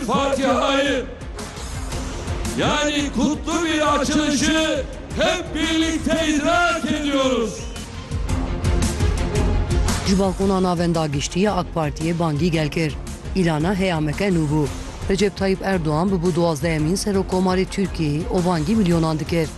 Fatihayı yani kutlu bir açılışı hep birlikte idrak ediyoruz. Ji balkona navenda giştî ya AK Partiyê bangî gel kir. Îlana heyameke nû bû. Recep Tayyîp Erdogan bûbû duwazdehemîn Serokkomarê Tirkiyeyê û bangî milyonan dikir.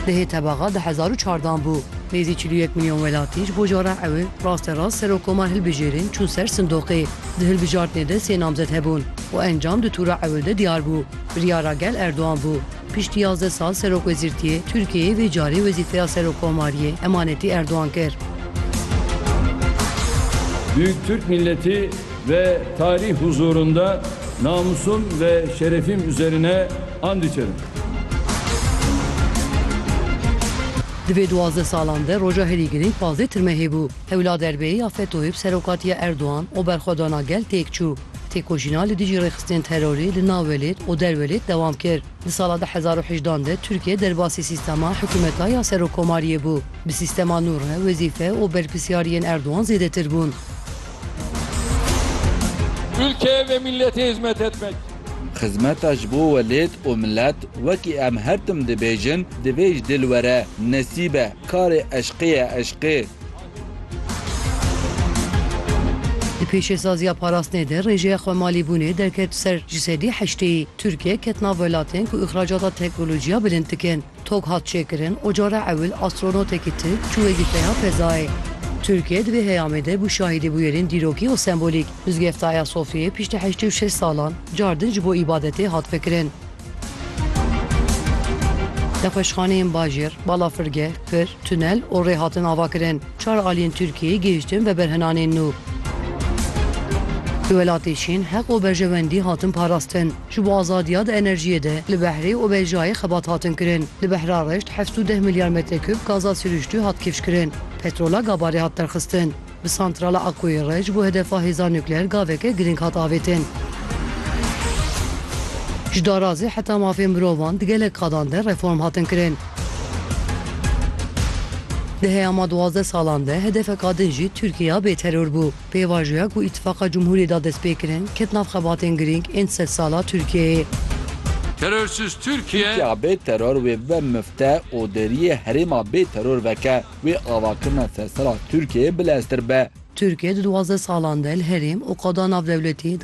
Di hê tebaxa di hezar û çardan bû. Nêzî çil û yek milyon welatî ji bo jara ew ê rasterast Serokkomar hilbijêrin çûn ser sindoqê. Di hilbijartinê de sê namzet hebûn û encam di tûra ewil de diyar bû. Biryara gel Erdogan bû. Piştî yazdeh sal serokwezîrtiyê, Tirkiyeyê vê carê wezîfeya serokkomariyê emanetî Erdogan kir. Büyük Türk milleti ve tarih huzurunda namusum ve şerefim üzerine and içerim. Di vê duwazdeh salan de roja herî girîng pazdeh tirmehê bû. Hewla derbê ya FETÖ'yê bi serokatiya Erdogan û berxwedana gel têk çû. Têkoşîna li dijî rêxistinên terorê li nav welêt û der welêt dewam kir. Di sala du hezar û heşt an de Tirkiye derbasî sîstema hikûmeta ya serokkomariyê bû. Bi sîstema nû re wezîfe û berpirsyariyên Erdogan zêdetir bûn. Ülkeye ve millete hizmet etmek. Xizmeta ji bo welêt û milet, wekî em her tim dibêjin, divê ji dil were, nesîbe. Karê eşqê ye eşqê. Di pêşêsaziya parastinê de rêjeya xwemalîbûnê derket ser ji sedî heşteyî. Tirkiye ket nav welatên ku îxracata teknolojiya bilind dikin. Tok hat çêkirin û cara ewil astronotekî tirk çû wezîfeya fezayê. Tirkiye di vê heyamê de bû şahîdê bûyerên dîrokî û sembolîk. Mizgefta Ayasofyayê piştî heştê û şeş salan car din ji bo îbadetê hat vekirin. Nexweşxaneyên bajêr, balafirgeh, pir, tunel û rê hatin avakirin. Çar aliyên Tirkiyeyê gihiştin veberhinanên nû. Di welatê Çîn heq û berjewendî hatin parastin. Ji bo azadiya di enerjiyê de li behrê û bejayê xebat hatin kirin. Li behra reşt heft û deh milyar metrekûb gaza sirûştû hat kifşkirin. Petrola gabarê hat derxistin. Bi santrala Akkoyê re ji bo hedefa hêza nukleer gaveke girîng hat avêtin. Ji darazê heta mafên mirovan di gelek qadan de reform hatin kirin. Di heyama duwazdeh salan de hedefeka din jî Tirkiyeya bêteror bû. Pêvajoya ku Îtîfaqa Cumhuriyê da destpêkirin ket nav xebatên girîng ên sedsala Tirkiyeyê. Terörsüz Türkiye. Tirkiya bêteror wê bibe mifte û deriyê herêma bêteror veke. wê avakirina sersera Tirkiyeyê bileztir be. Tirkiye di duwazdeh salan de li herêm û qada navdewletî di